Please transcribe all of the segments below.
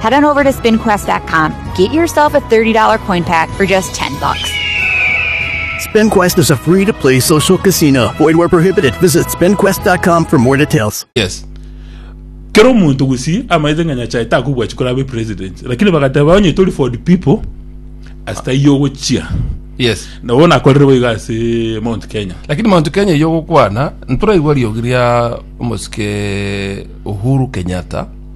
Head on over to spinquest.com. Get yourself a $30 coin pack for just 10 bucks. SpinQuest is a free to play social casino. Void where prohibited. Visit spinquest.com for more details. yes kera omonto gusii amaete ng'a nyachae takobwachi korabe president lakini bagateba onye tori for the people asita iye ogochia yes nabo nakorire boigo ase mount kenya lakini mount kenya iyo gokwana ntoraigwa riogi ria omosike uhuru kenyatta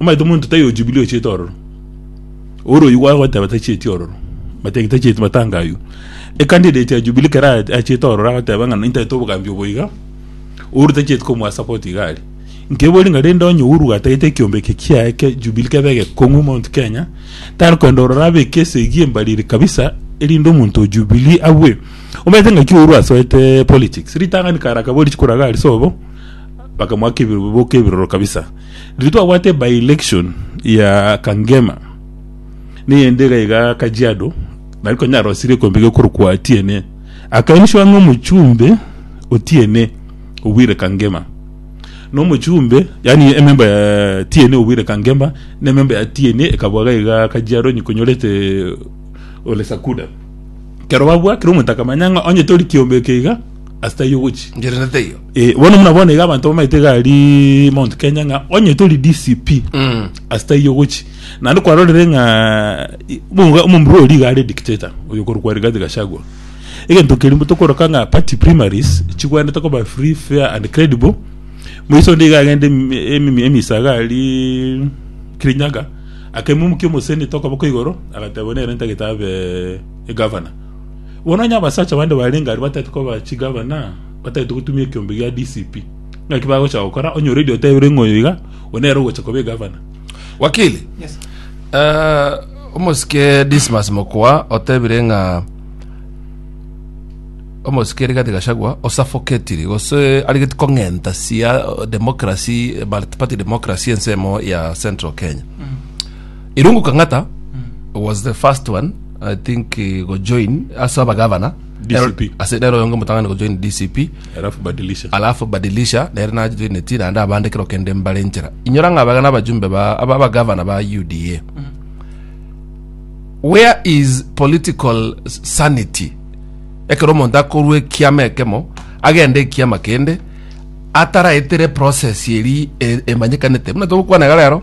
Omanyete omonto tari o Jubilee ochete ororo, ore oyio gwagoteba tacheti ororo, bateba ki tacheti matanga ayio. Ecandidate ya Jubilee ekero a- achete ororo agoteba ng'a nintaete obogambi obo iga, Uhuru tacheti komoa support iga aria. Nkebori ng'a rende onye Uhuru gatagete ekiombeke kiaye kia Jubilee kebe egekong'u Mount Kenya, tari koenda ororo abeke esegi embariri kabisa erinde omonto o Jubilee abue. Omanyete ng'aki Uhuru asoete politics? Ritang'ani kare akabori chikura iga aria sobo, bakamoaka ebirobo boka ebiroro kabisa. Riria twabwate by-election ya Kangema, neyende iga iga Kajiado, nari konya arosire ekombe gekorokwa Atiene, akairishwa ng'a omochumbe Otiene obwire Kangema. Na omochumbe, yani ememba ya Tiene obwire Kangema, na ememba ya Tiene ekabwa iga iga Kajiado onye konyorete Ole Sakuda. Kero babwakire omonto akamanya ng'a onye tori kiombe eke iga, ase taiyo ogochia. Ngere na taiyo. Eh, bono muna bono iga abanto bamaete gari Mount Kenya ng'a onye tori DCP Mm. asitaiyo gochi naende kwarorire ng'a i- bunga- omomura ori iga are dictator oyo korokwa Rigathi Gachagua egento keria tokoroka ng'a party primaries chigwenerete koba free fair and credible moiso onde iga agende emi- emi- emisaga aria Kirinyaga akemomukia omosenetor okoboko igoro agateba nere ntagete abe egovernor bono onye abasacha bande barenge aria batagete koba chigavana Batagete gotumia ekiombe gia DCP. Naki bagocha gokora onye already otebire ng'a oyo iga, oyo nere ogocha koba egavana. Wakili, eh, omosike Dismas Mokoa otebire ng'a omosike Rigathi Gachagua o suffocatiri gose arigeti kong'enta sia democracy, eh, multi-party democracy ensemo ya Central Kenya. Irungu Kang'ata was the first one, I think, eh, go join ase abagavana DCP. Ero- ase nero oyonge motang'ani gojoin dcp Alafu badilisha. alafu badilisha nere najoineti naende abande kero kende mbare nchera inyora ng'a abagana abajumbe ba aba abagavana ba uda where is political s- sanity ekero omonto akorwa ekiama ekemo agende ekiama kende ataraetere process eri e- emanyekanete buna togokwana iga rero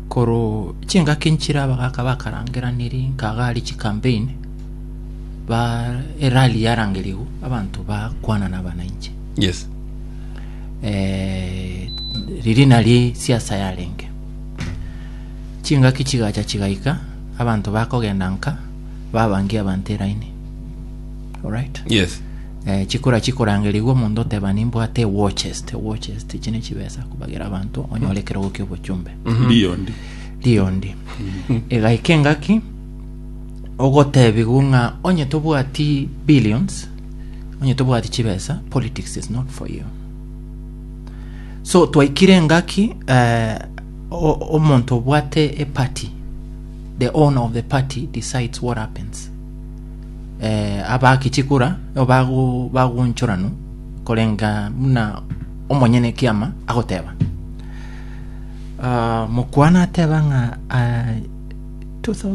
Korwa chingaki nchire abagaka bakarangeraniri nkagari chikampeini ba erali yarangerigu abanto bakwana nabananchi. Yes. Eh, riri nari siasa yarenge. Chingaki chigacha chigaika abanto bakogenda nka babangia abanto eraini. Alright? Yes. Eh, chikora chikorangerigwa omonto oteba nimbwate ewatches te watches tichi nechibesa kubagera abanto onyore ekerogo kia obochumbe Ndio ndi. riondi egaika engaki ogotebigwa ng'a onye tobwati billions onye tobwati chibesa politics is not for you so twaikire engaki eh, o- omonto obwate eparty the owner of the party decides what happens eh, abakichi kora nabo bago- bagoonchoranu korenga buna omonyene ekiama agoteba Ah, mokwana ateba ng'a ah,